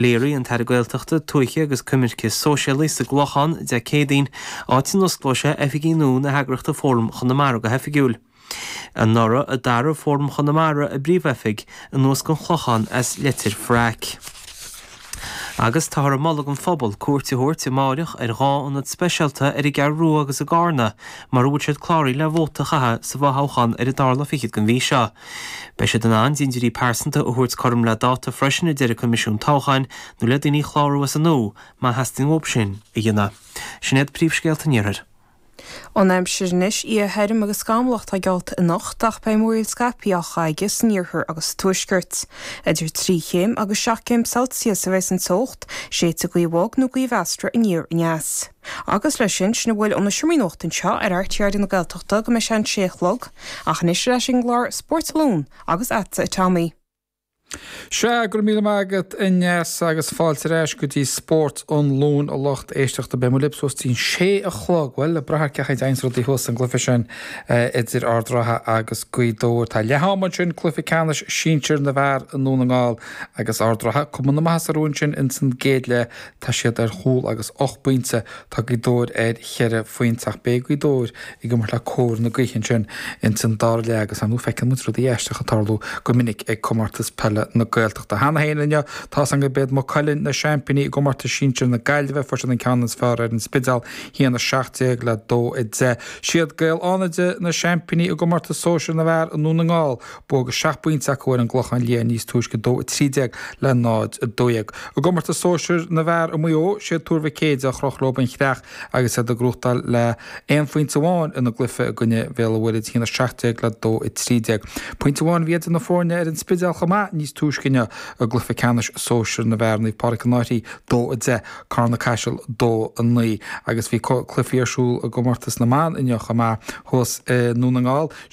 Léirigh an tAire Gaeltachta, Tuaithe agus Coimirce Sóisialaí sa gClochán Dé Céadaoin, áit a n-osclóidh sé oifigí nua na heagraíochta Fóram Chonamara go hoifigiúil. Anuraidh a d'athraigh Fóram Chonamara a bpríomhoifig anuas chun an Chlocháin as Leitir Fraic. Agus táthar ag moladh don phobal cuairt a thabhairt amáireach ar dhá ionad speisialta ar an gCeathrú Rua agus i gCarna mara bhfuil siad cláraithe le vóta a chaitheamh sa bhfothoghchán ar an dara lá fichead den mhí seo. Beidh siad in ann dintiúirí pearsanta a thabhairt cothrom le dáta freisin, a deir an Coimisiún Toghcháin, nó le daoine a chlárú as an nua má theastaíonn uathu sin a dhéanamh. Sin iad príomhscéalta an iarthair. An aimsir anois, Oíche thirm agus scamallach atá geallta anocht ach beidh múraíl scaipthe á chaitheamh san iarthar agus sa tuaisceart. Idir trí chéim agus seacht gcéim Celsius a bheidh an teocht, séidfidh gaoth bhog nó gaoth mheasartha aniar aneas. Agus leis sin, sin a bhfuil ón seomra nuachta anseo ar RTÉ Raidió na Gaeltachta go mbeidh sé an sé a chlog, ach anois ar ais ag an gclár Spórt an Luain agus agatsa a Tommy. Sea, go raibh míle maith agat a Neasa agus fáilte ar ais go dtí Spórt an Luain a lucht éisteachta. Beidh muid libh suas dtí'n sé a chlog, bhuel, ag brath ar cén chaoi a dtéanns rudaí thuas sa gcluiche sin idir Ard Ratha agus Gaoth Dobhair. Tá leath ama ansin, cluiche ceannais sinsir na bhfear i nDún na nGall agus Ard Ratha cuma na maitheasa orthu ansin insan gcéad leath Tá siad ar chúl agus ocht bpointe, tá Gaoth Dobhair ar cheithre phointe ach beidh Gaoth Dobhair ag imirt le cóir na gaoithe ansin ins an dara leath agus ar ndóigh feiceann muid rudaí aisteacha ag tarlú go minic ag Comórtas Peile na Gaeltachta. Cheana féin inniu tá a fhios againn gurb iad Maigh Cuilinn na seaimpíní i gcomórtas sinsir na Gaillimhe. Fuair siad an ceann is fearr ar an Spidéal 1 17 le 2 10. Siad Gaeil Fhánaide na seaimpíní i gcomórtas sóisir na bhfear i nDún na nGall. Bua seacht bpointe acu ar an gClochán Liath níos túisce, 2 13 le 0, 12. I gcomórtas sóisir na bhfear i Maigh Eo, sé Tuar Mhic Éadaigh a chroch leo an chreach agus iad ag gnóchtáil le aon phointe amháin ina gcluiche i gcoinne Bhéal an Mhuirthead, 1 17 le 2, 13. Pointe amháin a bhí idir na foirne ar an Spidéal chomh maith níos túisce inniu i gcluiche ceannais sóisir na bhfear, Naomh Pádraic An Fhairche 2 10, Carna-Caiseal 2 9, agus bhí cluichí ar siúl i gcomórtas na mban inniu chomh maith. Thuas i nDún na nGall,